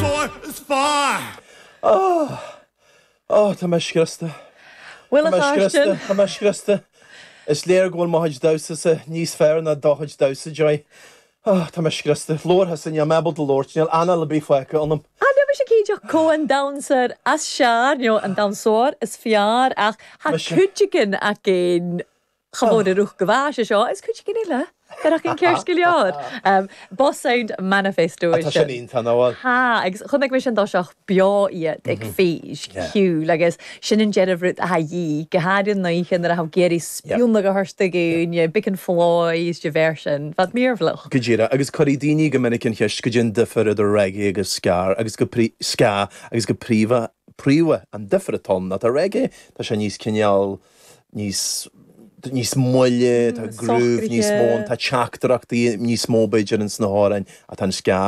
Sóir is fearr! Áh! Áh! Tá mé scriosta. Bhuel a Sheáistin! Tá mé scriosta. Is léir go bhfuil mo chuid damhsasa níos fearr ná do chuid damhsa, Joy. Áh! Tá mé scriosta. Labhair thusa, níl mé ábalta labhairt. Níl anáil ar bith fágtha ionam. Ach bíonn mise ag ídeadh comh an damhsóir is fearr, nó an damhsóir is fearr, ach tá cuid againn ach aon. Chomh mór ruc go bhfeadh sé seo, is cuid cinniúil le fearacht an chéir scileád. Boss Sound Manifesto is ea. Tá, agus chonaic mise i dtoiseach beo iad ag feis cheoil agus sin go díreach an rud atá de dhíth, go háirithe an oíche nuair a thabh géirí spionnadh a thabhairt againn, Big and Floy is de bheir sin. Bheadh míorbhloch. Go díreach, agus cuirfidh daoine go minic an cheist cad é an difear idir reggae agus ska, agus go prí ska, agus go príomha, príomha, an difear atá ann ná tá reggae, tá sé níos cineál, níos, níos moille, tá groove níos mó ann, tá teachtaireachtaí níos mó b'fhéidir ins na hamhráin ach tá an ska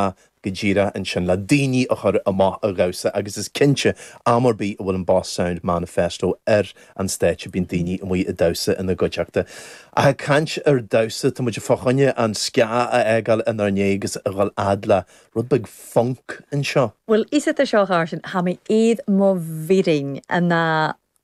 go díreach ansin le daoiní a chur amach a dhamhsa agus is cinnte am ar bith a bhfuil an Boss Sound Manifesto ar an stáitse bíonn daoiní amuigh ag damhsa ina gcuideachta. Ag caint ar damhsa, tá muid fá choinne an ska a fhágáil inár ndiaidh agus a dhul fhad le rud beag funk anseo. Bhuel, is iad seo a chur sin, tá mé iad mo bhfirinn, na.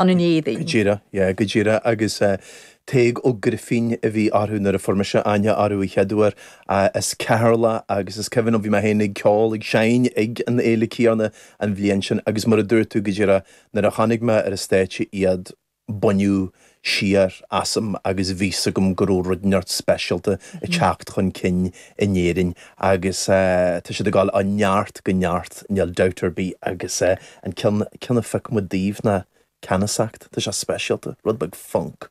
an ngéibhinn. Go díreach, yeah, go díreach agus eh, Tadhg Ó Grifín a bhí orthu nuair a fuair mise aithne orthu an chéad uair, ah, as Ceatharlach agus is cuimhin liom bhí mé féin ag ceol ag seinm ag an fhéile chéanna an bhliain sin agus mar a dúirt tú go díreach nuair a chonaic mé ar an stáitse iad baineadh siar asam agus bhí a fhios agam go raibh rud inteacht speisialta ag teacht chun cinn in Éirinn agus eh, tá siad ag gabháil ó neart go neart níl dabht ar bith agus eh, An ceann a phioc muid daoibh ná Ceannasacht. Tá sé speisialta, rud beag funk.